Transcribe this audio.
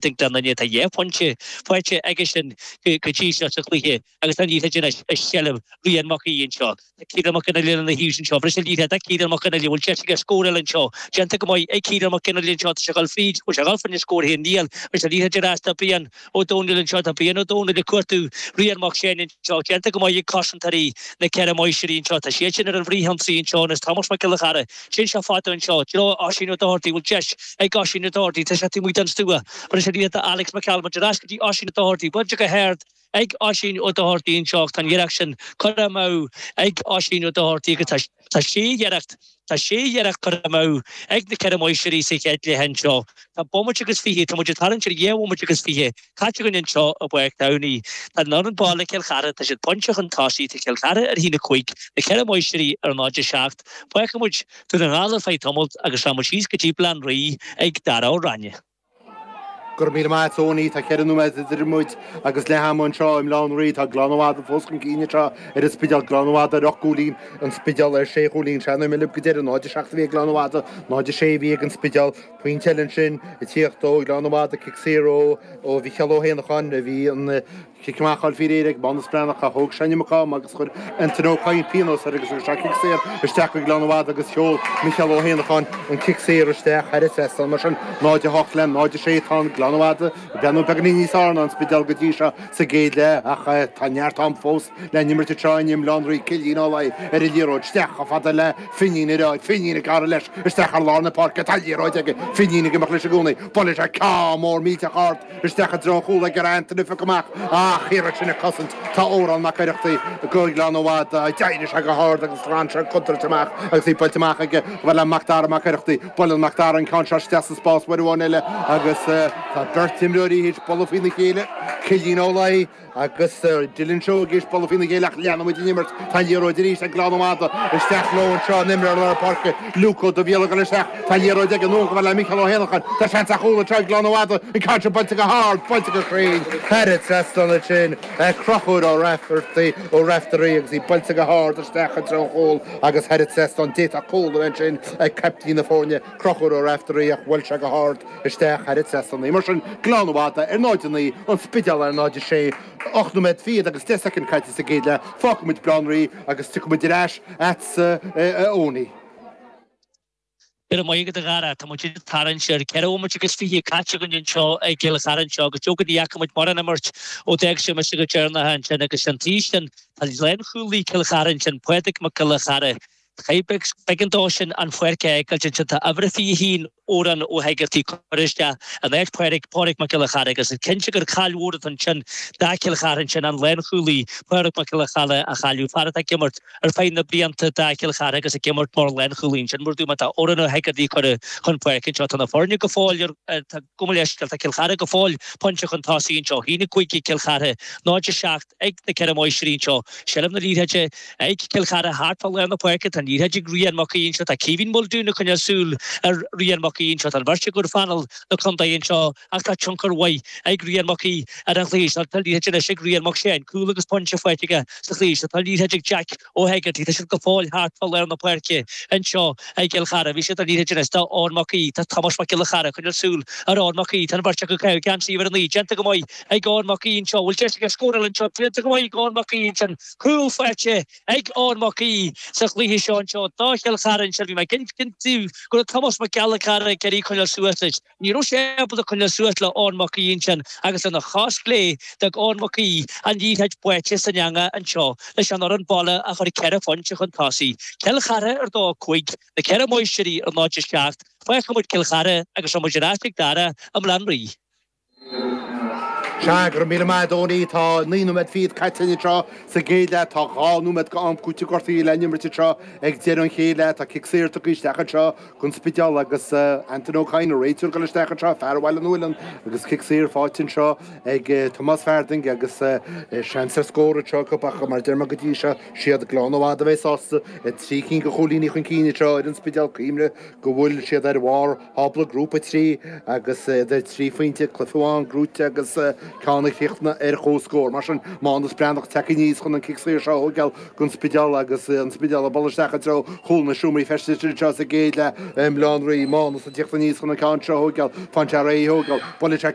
Tuig do dhuine atá dhá phointe faighte aige sin go dtí seo sa chluiche agus tá an oíche sin i seilbh Rian Mac Aoidh anseo. Tá Ciarán Mac Fhionnlaoich lena thaobh sin anseo. Briseann an liathróid do Chiarán Mac Fhionnlaoich. Bhfuil deis aige scór eile anseo? Déanta go maith ag Ciarán Mac Fhionnlaoich anseo. Tá sé ag dul fríd. Bhfuil sé ag dul fríd an scór féin? Níl. Briseann an liathróid ar ais do Brian Ó Domhnaill anseo. Tá Brian Ó Domhnaill ag cuartú Rian Mac Seáin anseo. Déanta go maith ag cosantóirí Na Ceithre Máistrí anseo. Tá siad sin ar an bhfrithionsaí anseo anois. Tomás Mac Giolla Chearra. Téann sé fada anseo, i dtreo Oisín Ó Dochartaigh, bhfuil deis ag Oisín Ó Dochartaigh, tá sé taobh amuigh den stua, buailte anonn do Alex McCalmont, ar ais go dtí Oisín Ó Dochartaigh, buailte go hard ag Oisín Ó Dochartaigh anseo ach tá an iarracht sin curtha amú ag Oisín Ó Dochartaigh agus tá, tá sé iarracht, tá sé iarracht curtha amú ag na Ceithre Máistrí sa chéad leath anseo. Tá bomaite agus fiche, tá muid ag tarraingt ar dhá bhomaite agus fiche, Caite againn anseo i bPáirc Tamhnaigh, tá an fhoireann baile Cill Chartha, tá siad pointe chun tosaigh, tá Cill Chartha ar a haon a cúig, na Ceithre Máistrí ar 0-7. Fágfaidh muid Dún na nGall ar feadh tamaill agus leanann muid síos go dtí Baile Átha an Rí ag Darragh Ó Ráinne. Go raibh míle maith agat Eoghanaí, tá ceithre nóiméad idir muid agus leath ama anseo i mBaile Átha an Rí. Tá Gleann na Madadh fós chun cinn anseo ar an Spidéal. Gleann na Madadh ar ocht gcúilín, an Spidéal ar shé chúilín. San am a raibh mé libh go deireadh, 0-7 a bhí ag Gleann na Madadh, 0-6 a bhí ag an Spidéal. Pointe eile ansin ag tíocht ó Ghleann na Madadh, cic saor ó Mhicheál Ó hÉanacháin a bhí an cic amach thall faoi réir ag Mánus Breathnach ach thóg sé an iomarca ama agus chuir Anthony Ó Cadhain pionós air agus thug sé cic saor isteach chuig Gleann na Madadh agus sheol Micheál Ó hÉanacháin an cic saor isteach thar an trasnán. Mar sin 0-8 le 0-6 tá Gleann na Madadh ag breathnú beagainín níos fearr ná an Spidéal go dtí seo sa gcéad leath ach tá neart am fós. le n-imirt tráthnóna i mBaile Átha an Rí, Cillín Ó Laoi ar an liathróid isteach chomh fada le Finín Ó Laoi, Finín ag gearradh leis isteach thar lár na páirce, tá liathróid aige, Finín ag imeacht leis i gcónaí, bhuail sé an ceann mór millteach ard isteach i dtreo an chúil ag iarraidh Antaine a phiocadh amach ach thiar ansin ag cosaint, tá Odhrán Mac Oireachtaigh do Ghleann na Madadh, d'éirigh sé go hard agus ghlan sé an contúirt amach agus í buailte amach aige, a fhad le Macdara Mac Oireachtaigh, buaileann Macdara an ceann seo isteach sa spás uair amháin eile agus tá beirt imreoirí théis bualadh faoina chéile, Cillín Ó Laoi. Agus Dylan Seoighe théis bualadh faoina chéile ach leanfaidh muid den imirt, tá liathróid arís ag Gleann na Madadh, isteach leo anseo an t-imreoir lár páirce Luke Ó Duibhghiolla ag dul isteach, tá liathróid aige anonn a fhad le Micheál Ó hÉanacháin, tá seans ar chúl anseo ag Gleann na Madadh, an ceann seo buailte go hard, buailte go cruinn, thar an trasnán ansin ag Conchúr Ó Rafferty, Ó Raiftearaí agus í buailte go hard isteach i dtreo an chúil agus thar an trasnán, d'fhéadfadh cúl a bheith ansin ag caiptín na foirne, Conchúr Ó Raiftearaí ach bhuail sé go hard isteach thar an trasnán. Mar sin, Gleann na Madadh, ar 0 9, An Spidéal, ar 0 6, 8 nóiméad fichead agus deich soicind caite sa gcéad leath, fágfaidh muid Baile Átha an Rí agus tiocfaidh muid ar ais agatsa Eoghanaí. Go raibh maith agat a Dharragh, tá muid ag tarraingt ar ceithre bomaite agus fiche caite againn anseo i gCill Chartha anseo agus leoga ní fhaca muid mórán imirt ó d'fhág sibh mise go deireanach ansin agus an taobh sin tá lánchúlaí Chill Chartha ansin, Pádraig Mac Giolla Chearra. Cé, b'éigean dó sin an pháirc a fhágáil ansin, tá uimhir a 21 Odhrán Ó hEigeartaigh curtha isteach in áit Pádraig, Pádraig Mac Giolla Chearra agus is cinnte gur caill mhór atá ansin do Chill Chartha ansin an lánchúlaí Pádraig Mac Giolla Chearra a chailleadh fear atá ag imirt ar feadh na blianta do Chill Chartha agus ag imirt mar lánchúlaí ansin mar a dúirt mé tá Odhrán Ó hEigeartaigh curtha chun páirce anseo tá na foirne go fóill ar Cuma leis, tá Cill Chartha go fóill pointe chun tosaigh anseo. 1-5 ag Cill Chartha 0-7 ag na ceithre máistrí anseo. Seilbh na liathróide ag Cill Chartha thart fá lár na páirce. Tá an liathróid ag Ryan Mac Aoidh anseo. Tá Caoimhín Muldoon ag coinneáil súil ar Ryan Mac Aoidh anseo. Tá an bheirt acu ar phainéal na contae anseo ach tá tionchar mhaith ag Ryan Mac Aoidh ar an chluiche seo. Tá an liathróid anois ag Ryan Mac Seáin. Cúl agus pointe faighte aige sa chluiche seo. Tá an liathróid ag Jack. Ó hEigeartaigh, tá seilbh go fóill thart fá lár na páirce anseo ag Cill Chartha. Bheir siad an liathróid anois do Eoin Mac Aoidh, tá Tomás Mac Giolla Chearra ag coinneáil súil ar Eoin Mac Aoidh, tá an bheirt acu ag caitheamh geansaí uimhir a naoi déanta go maith ag Eoin Mac Aoidh anseo, bhfuil deis aige scóráil anseo, déanta go maith ag Eoin Mac Aoidh ansin, cúl faighte ag Eoin Mac Aoidh sa chluiche seo anseo do Chill Chartha anseo, bhí mé ag insint daoibh go raibh Tomás Mac Giolla Chearra ag iarraidh coinneáil suas leis. Ní raibh sé ábalta coinneáil suas le Eoin Mac Aoidh ansin agus lena chos chlé, d'fhág Eoin Mac Aoidh an liathróid báite san eanga anseo leis an fhoireann baile a chur ceithre phointe chun tosaigh, Cill Chartha ar 2, 5, Na Ceithre Máistrí ar 0, 7, fágfaidh muid Cill Chartha agus rachaidh muid ar ais ag Dara i mBaile Átha an Rí. Sea, go raibh míle maith a Dhónaí, tá naoi nóiméad fichead caite anseo sa gcéad leath, tá dhá nóiméad de am cúitimh gortuithe le n-imirt anseo ag deireadh an chéad leath, tá cic saor tugtha isteach anseo Don Spidéal agus Antaine Ó Cadhain an réiteoir ag dul isteach anseo, fear ó Bhaile Nualláin agus cic saor faighte anseo ag Tomás Farthing agus seans ar scór anseo acu ach mar a deir mé go dtí seo, siad glan i bhfad a bheith sásta le trí cinn de chúilíní chun cinn anseo ar an Spidéal Cuimhnigh go bhfuil siad ar bharr thábla Grúpa 3 agus iad ar trí phointe cluiche amháin gnóite agus ceann críochnaithe ar comhscór. Mar sin Mánus Breathnach tagtha aníos chun an cic saor seo a thóigeáil. don Spidéal agus an Spidéal ag dul isteach i dtreo chúl na seomraí feistis anseo sa gcéad leath i mBaile Átha an Rí Mánus ag teacht aníos chun an ceann seo a thógáil, tá an tear é a thógáil, buailtear